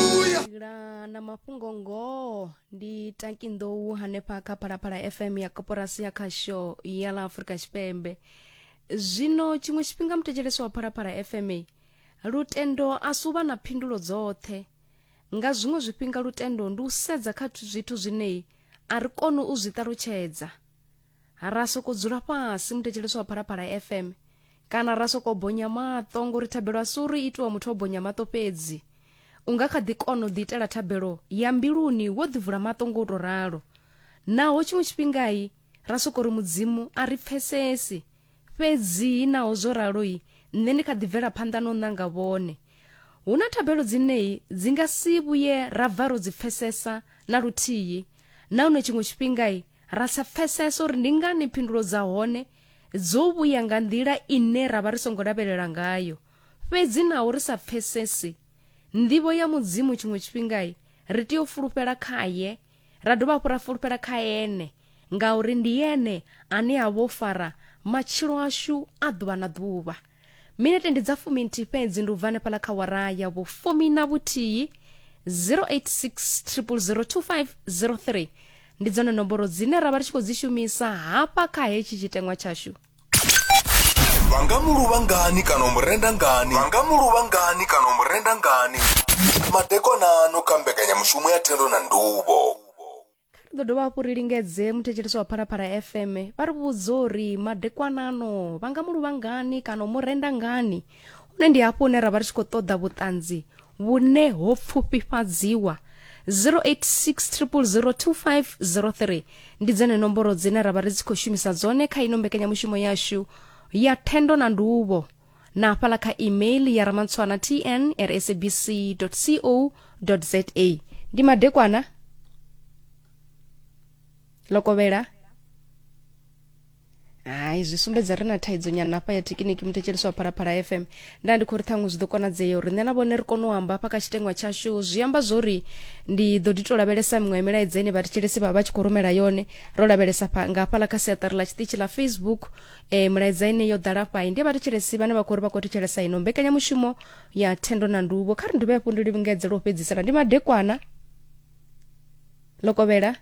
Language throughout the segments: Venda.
Ila na mafhungo ngoho ndi taki nḓou hanefha kha phalaphala fm ya koporasi ya khasho ya ḽa afurika tshipembe zwino tshiṅwe tshifhinga muthetshelesi wa phalaphala fm ei, lutendo a si u vha na phindulo dzoṱhe nga zwiṅwe zwifhinga lutendo ndi u sedza kha zwithu zwinei a ri koni u zwi ṱalutshedza Ra sokou dzula fhasi muthetshelesi wa Phalaphala FM kana ra sokou bonya maṱo ngori thabelo a si uri itiwa muthu o bonya maṱo fhedzi. U nga kha ḓi kona u ḓiitela thabelo ya mbiluni wo ḓivula maṱo ngo tou ralo. Naho tshiṅwe tshifhingai ra sokou ri Mudzimu a ri pfesesi. Fhedzi naho zwo raloi nṋe ndi kha ḓi bvela phanḓa no ṋanga vhone. Hu na thabelo dzinei dzi nga si vhuye ra bva ro dzi pfesesa na luthihi nahone tshiṅwe tshifhingai ra sa pfesesa uri ndi ngani phindulo dza hone dzo vhuya nga nḓila ine ra vha ri songo lavhelela ngayo fhedzi naho ri sa pfesesi nḓivho ya mudzimu tshiṅwe tshifhingai ri tea u fulufhela khaye ra dovha hafhu ra fulufhela kha ene ngauri ndi ene ane a vho fara matshilo ashu a ḓuvha na ḓuvha minete ndi dza fuminthihi fhedzi ndi u bva hanefhaḽa kha wara ya vhufumi na vhuthihi 0860002503 ndi dzone nomboro dzine ra vha ri tshi khou dzi shumisa hafha kha hetshi tshiteṅwa tshashu vha nga mu luvha ngani kana u mu renda ngani vha nga mu luvha ngani kana u mu renda ngani madekonano kha mbekanyamushumo ya thendo na nduvho kha ri ḓo dovha hafhu ri lingedze muthetshelesi wa phalaphala fm vha ri vhudze uri madekwanano vha nga mu luvha ngani kana u mu renda ngani hune ndi hafho hune ra vha ri tshi khou ṱoḓa vhuṱanzi vhune ho pfufhifhadziwa 0860002503 ndi dzone nomboro dzine ra vha ri tshi khou shumisa dzone kha ino mbekanyamushumo yashu ya thendo na nduvho na hafhala kha email ya ramantswana tn at sabc co za ndi madekwana lokovhela hai zwi sumbedza ri na thaidzo nyana hafha ya thekiniki muthetshelesi wa phalaphala fm nda ndi khou ri ṱhaṅwe zwi ḓo konadzea uri nṋe na vhone ri kone u amba hafha kha tshitengwa tshashu zwi amba zwori ndi ḓo ḓi tou lavhelesa miṅwe ya milaedza ine vhathetshelesi vha vha tshi khou rumela yone ro lavhelesa pha- nga hafhala kha siaṱari ḽa tshiṱitshi ḽa facebook e, mulaedza ine yo ḓala fhai ndi vhathetshelesi vhane vha khou ri vha khou thetshelesa ino mbekanyamushumo ya thendo na nduvho kha ri nduvhe hafhu ndi livhingedze lwo fhedzisela ndi madekwana lokovhela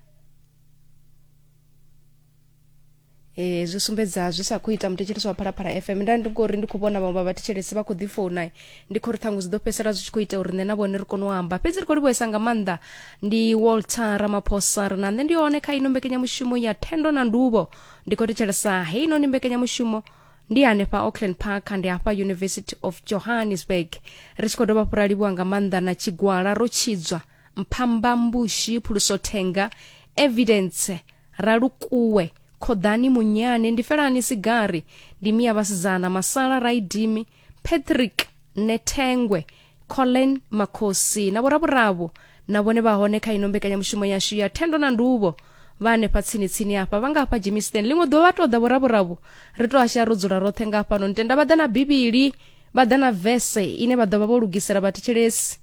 e, zwi sumbedza zwi sa khou ita muthetshelesi wa phalaphala fm nda ndi ngori ndi khou vhona vhaṅwe vha vhathetshelesi vha khou ḓi founa ndi khou ri ṱhangu zwi ḓo fhedzisela zwi tshi khou ita uri nṋe na vhone ri kone u amba fhedzi ri khou livhuhesa nga maanḓa ndi walter ramaphosa ri na nṋe ndi hone kha ino mbekanyamushumo ya thendo na nduvho ndi khou thetshelesa heinoni mbekanyamushumo ndi hanefha auckland park ndi hafha university of johannesburg ri tshi khou dovha fhura livhuwa nga maanḓa na tshigwala ro tshidzwa mphamba mbushi phuluso thenga evidence ralukuwe khoḓani munyane ndi felani sigari ndi miya vhasidzana masala raidimi patrick nethengwe colin makhosi na vhoravhuravhu na vhone vha hone kha ino mbekanyamushumo yashu ya thendo na nduvho vha hanefha tsini tsini hafha vha nga hafha jimisten ḽiṅwe ḓuvha vha tou ḓa vhoravhuravhu ri tou ashaya ro dzula roṱhe nga hafhanoni tenda vha ḓa na bivhili vha ḓa na vese ine vha ḓo vha vho lugisela vhathetshelesi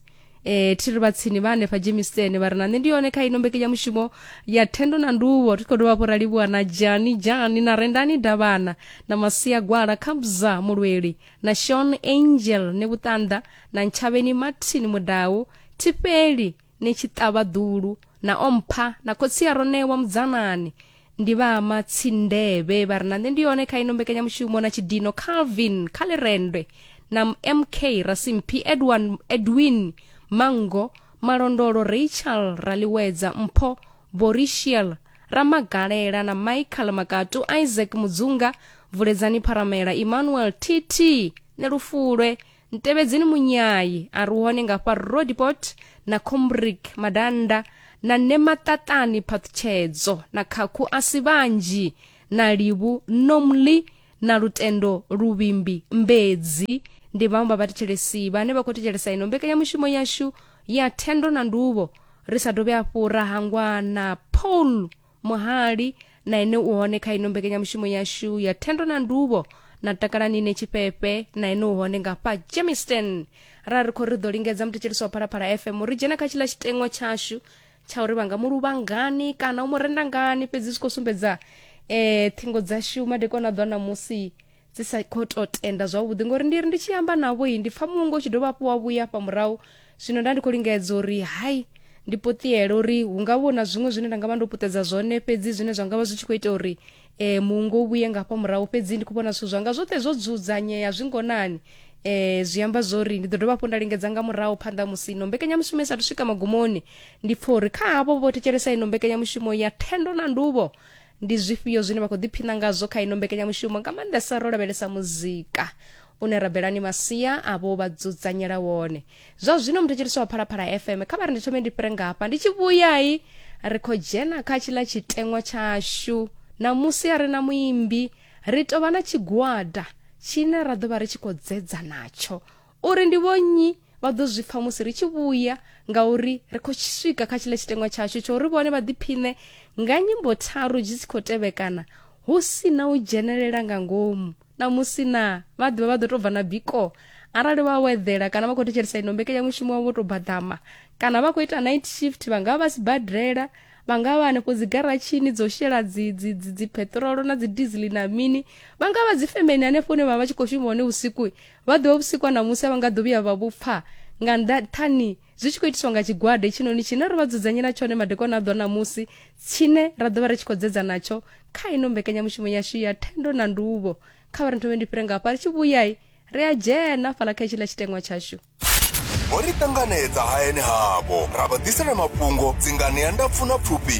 e thiri vha tsini vha hanefha jemistene vha ri na nṋe ndi yone kha ino mbekenyamushumo ya thendo na nduvho ri khou dovha hafhu ra livhuwa na jani jani na rendani davhana na masia gwala khabza mulweli na shon angel ne vhuṱanḓa na ntshavheni martin mudau thifheli ne tshiṱavha ḓulu na ompha na khotsi ya ronewa mudzanani ndi vha matsindevhe vha ri na nṋe ndi yone kha ino mbekanyamushumo na tshidino calvin kha lirendwe na mk rasimphi edwin, edwin mango malondolo rachel raliwedza mpho borishel ramagalela na michael makatu isaac mudzunga vuledzani pharamela emmanuel tt nelufulwe ntevhedzeni munyayi a ri hone nga fha rodipot na combrick madanda na nemaṱaṱani phaṱhutshedzo na khakhu a si vhanzhi na livhu nomli na lutendo luvhimbi mbedzi ndi vhaṅwe vha vhathetshelesi vhane vha khou thetshelesa ino mbekanyamushumo yashu ya thendo na nduvho ri sa dovhe afhu ra hangwa na paul muhali na ene u hone kha ino mbekanyamushumo yashu ya thendo na nduvho na takalani ine tshifhefhe na ene u hone nga fha jameson ra ri khou ri ḓo lingedza muthetshelisi wa phalaphala fm ri dzhena kha tshiḽa tshiteṅwa tshashu tsha uri vha nga mu luvha ngani kana u mu renda ngani fhedzi zwi khou sumbedza eh ṱhingo dzashu madekwana a ḓwa ṋamusi dzi sa khou tou tenda zwavhuḓi ngori ndi ri ndi tshi amba navho i ndi pfa mungo u tshi dovha hafhu wa vhuya afha murahu zwino nda ndi khou lingedza uri hai ndi puṱiele uri hu nga vho na zwiṅwe zwine nda nga vha ndo puṱedza zwone fhedzi zwine zwa nga vha zwi tshi khou ita uri um mungo u vhuye nga hafha murahu fhedzi ndi khou vhona zwithu zwanga zwoṱhe zwo dzudzanyea zwi ngonani um zwi amba zwo uri ndi ḓo dovha hafhu nda lingedza nga murahu phanḓa ha musi ino mbekanyamushumo i sathu swika magumoni ndi pfa uri kha havho vho thetshelesa ino mbekanyamushumo ya thendo na nduvho ndi zwifhio zwine vha khou ḓiphina ngazwo kha ino mbekanyamushumo nga maanḓesa ro lavhelesa muzika une rabelani masia avho vha dzudzanyela wone zwa zwino muthetshelisi wa phalaphala fm kha vha ri ndi thome ndi fhire ngafha ndi tshi vhuyai ri khou dzhena kha tshiḽa tshiteṅwa tshashu namusi a ri na muimbi ri tovha na tshigwada tshine ra ḓo vha ri tshi khou dzedza natsho uri ndi vhonnyi vha ḓo zwi pfa musi ri tshi vhuya ngauri ri khou swika kha tshiḽa tshiteṅwa tshashu tsho uri vhone vha ḓiphiṋe nga nyimbo tharu dzi tshi khou tevhekana hu si na u dzhenelela nga ngomu na musi na vha ḓivha vha ḓo tou bva na biko arali vha weḓela kana vha khou thetshelesa ino mbekanyamushumo wavho tou badama kana vha khou ita night shift vha nga vha vha sibadela vha nga vha hanefho dzi garatshini dzo shela dzi dzi dzi dzi peṱirolo na dzi dizili na mini vha nga vha dzi femeni hanefho hune vha vha tshi khou shuma hone vhusiku vha ḓivha vhusiku ha ṋamusi a vha nga ḓo vhuya vha vhu pfa nga nṱhani zwi tshi khou itiswa nga tshigwada hetshinoni tshine ro vha dzudzanyela tshone madekwana a ḓo ṋamusi tshine ra ḓo vha ri tshi khou dzedza natsho kha ino mbekanyamushumo yashu ya thendo na nduvho kha vha ri nthome ndi fhire ngafha ri tshi vhuyai ri a dzhena fhala kha hetshiḽa tshiteṅwa tshashu vho ri ṱanganedza hayani havho ra vha ḓisela mafhungo dzingani ya ndapfu na pfufhi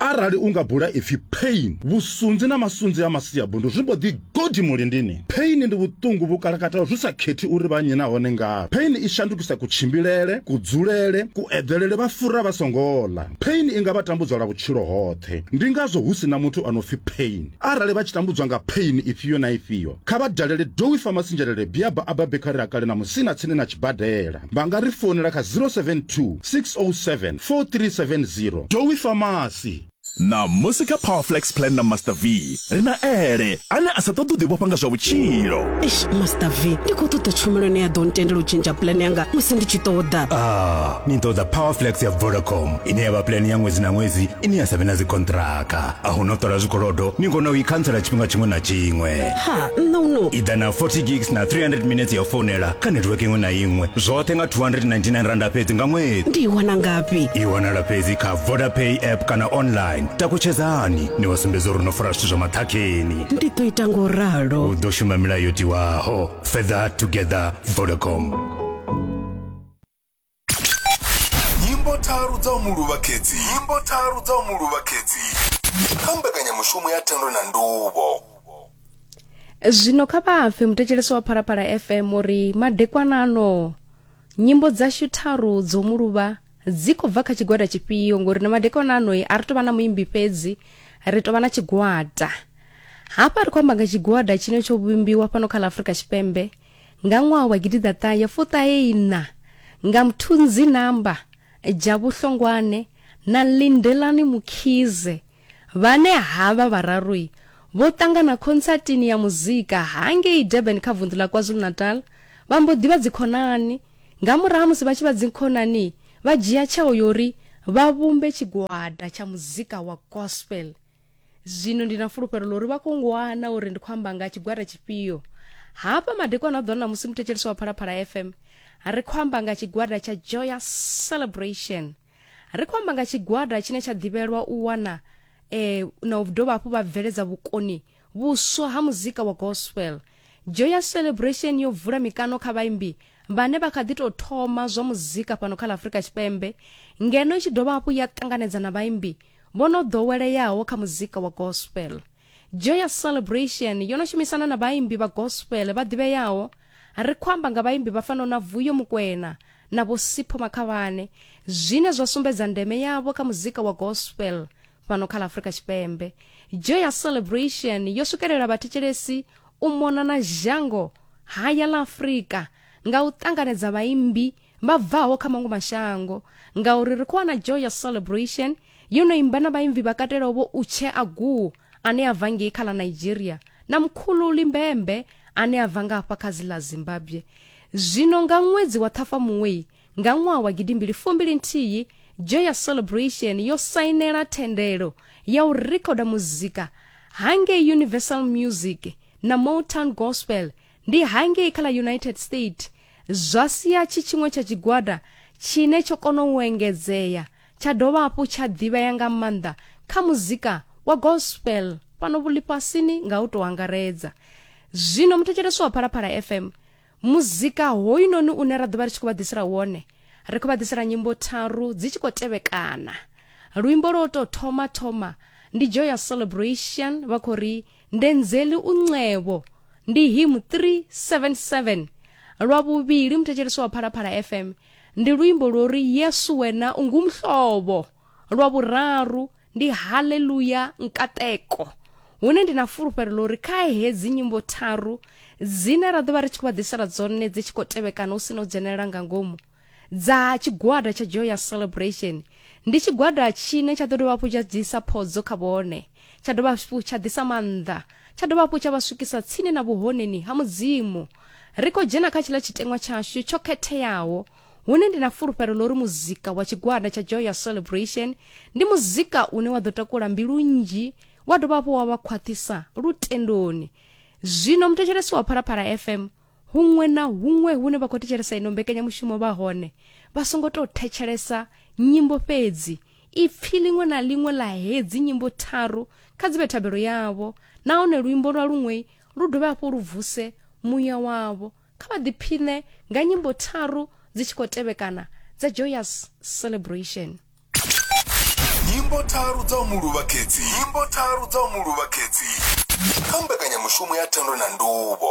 arali u nga bula ipfi pain vhusunzi na masunzi a masiabundu zwi mbo ḓi godi mulindini pain ndi vhuṱungu vhu kalakataho zwi sa khethi uri vha nnyi nahone ngavhe pain i shandukisa kutshimbilele kudzulele kueḓelele vha fura vha songo ḽa pain i nga vha tambudzwa lwa vhutshilo hoṱhe ndi ngazwo hu si na muthu a no pfi pain arali vha tshi tambudzwa nga pain ifhio na ifhio kha vha dalele dowi famasinjelele biaba a babekari a kale na musina tsini na tshibadela vha nga ri founela kha 072 607 4370. Dowie Pharmacy. Ṋamusi kha Powerflex Plan na Master V, ri na Ele, ane a sa ṱoḓi u ḓivhofha nga zwa vhutshilo. Eish Master V, ndi khou ṱoḓa tshumelo ine ya ḓo ntendela u tshentsha plan yanga musi ndi tshi ṱoḓa. Ah, ni ṱoḓa Powerflex ya Vodacom ine ya vha plan ya ṅwedzi na ṅwedzi ine ya sa vhe na dzikonṱiraka. A hu na u ṱola zwikolodo, ni kona u i khantsela tshifhinga tshiṅwe na tshiṅwe. ha nṋe uno iḓa na 40 gigs na 300 minutes ya founela kha network iṅwe na iṅwe zwoṱhe nga 299 randa fhedzi nga ṅwedzi ndi i wana ngafhi i wanala fhedzi kha vodapay app kana online takutshedzani ni wa sumbedza uri no fara zwithu zwa maṱhakheni ndi ḓo ita ngo ralo u ḓo shuma milayo yo tiwaho further together vodacom nyimbo tharu dza u mu luvha khedzi nyimbo tharu dza u mu luvha khedzi kha mbekanyamushumo ya thendo na nduvho zwino kha vha pfe muthetshelesi wa phalaphala fm uri madekwana ano nyimbo dzashu tharu dzo mu luvha dzi khou bva kha tshigwada tshifhio ngori na madekwana ano a ri tou vha na muimbi fhedzi ri tou vha na tshigwada hafha ri khou amba nga tshigwada tshine tsho vhumbiwa fhano kha ḽa afurika tshipembe Nga ṅwaha wa gidiḓaṱahe fuṱahe-iṋa, nga Mthunzi Namba, Jabu Hlongwane na Lindelani Mkhize, vhane havha vhararu vho ṱangana khontsatini ya muzika hangei Durban kha vunḓu ḽa KwaZulu-Natal, vha mbo ḓi vha dzikhonani. Nga murahu ha musi vha tshi vha dzikhonani, vha dzhia tsheo ya uri vha vhumbe tshigwada tsha muzika wa gospel. zwino ndi na fulufhelo ḽa uri vha khou ngwana uri ndi khou amba nga tshigwada tshifhio hafha madekwana a ḓo na musi muthetshelesi wa phalaphala fm ri khou amba nga tshigwada tsha joyous celebration ri khou amba nga tshigwada tshine tsha ḓivhelwa u wana eh, na u dovha hafhu vha bveledza vhukoni vhuswa ha muzika wa gospel joyous celebration yo vula mikano kha vhaimbi vhane vha kha ḓi tou thoma zwa muzika fhano kha ḽa afurika tshipembe ngeno i tshi dovha hafhu ya ṱanganedza na vhaimbi vho no ḓoweleaho kha muzika wa gospel. Joyous Celebration yo no shumisana na vhaimbi vha gospel vha ḓivheaho. Ri khou amba nga vhaimbi vha fanaho na Vuyo Mukwena na Vho Sipho Makhavhane, zwine zwa sumbedza ndeme yavho kha muzika wa gospel fhano kha ḽa Afrika Tshipembe. Joyous Celebration yo swikelela vhathetshelesi u mona na zhango haya ḽa Afrika nga u ṱanganedza vhaimbi vha bvaho kha maṅwe mashango ngauri ri khou wana joya celebration yo no imba na vhaimbi vha katelaho vho utshe aguo ane a bva ngei kha ḽa nigeria na mkhulu limbembe ane a bva nga hafha kha dzi ḽa zimbabwe zwino nga ṅwedzi wa ṱhafamuwei nga ṅwaha wa gidimbili fumbili nthihi joya celebration yo sainela thendelo ya u rekhoda muzika hangei universal music na motown gospel ndi hangei kha ḽa united state zwa sia tshi tshiṅwe tsha tshigwada tshine tsho kona u engedzea tsha dovha hafhu tsha ḓivhea nga maanḓa kha muzika wa gospel fhano vhulifhasini nga u tou angaredza zwino muthetshelesi wa phalaphala fm muzika hoyunoni une ra ḓovha ri tshi khou vha ḓisela wone ri khou vha ḓisela nyimbo tharu dzi tshi khou tevhekana luimbo lwo tou thoma thoma ndi joy ya celebration vha khou ri ndenzeli uncevo ndi hymn 377 lwa vhuvhili muthetsheleswa wa phalaphala fm ndi luimbo lwo ri yesu wena ungumhlovo lwa vhuraru ndi haleluya nkateko hune ndi na fulufhelo ḽo ri kha hedzi nyimbo tharu dzine ra ḓo vha ri tshi khou vha ḓisela dzone dzi tshi khou tevhekana hu si no dzhenelela nga ngomu dza tshigwada tsha Joyous Celebration ndi tshigwada tshine tsha ḓo dovha hafhu tsha ḓisa phodzo kha vhone tsha dovha hafhu tsha ḓisa maanḓa tsha dovha hafhu tsha vha swikisa tsini na vhuhoneni ha mudzimu ri khou dzhena kha tshiḽa tshiteṅwa tshashu tsho khetheaho hune ndi na fulufhelo ḽo ri muzika wa tshigwada tsha Joyous Celebration ndi muzika une wa ḓo takula mbilu nnzhi wa dovha hafhu wa vha khwaṱhisa lutendoni zwino muthetshelesi wa phalaphala fm huṅwe na huṅwe hune vha khou thetshelesa ino mbekanyamushumo vha hone vha songo tou thetshelesa nyimbo fhedzi ipfi ḽiṅwe na ḽiṅwe ḽa hedzi nyimbo tharu kha dzi vhe thabelo yavho nahone luimbo lwa luṅwe lu dovhe hafho lu vuse muya wavho kha vha ḓiphiṋe nga nyimbo tharu dzi tshi khou tevhekana dza joyous celebration nyimbo tharu dza u mu luvha khedzi nyimbo tharu dza u mu luvha khedzi kha mbekanyamushumo ya thendo na nduvho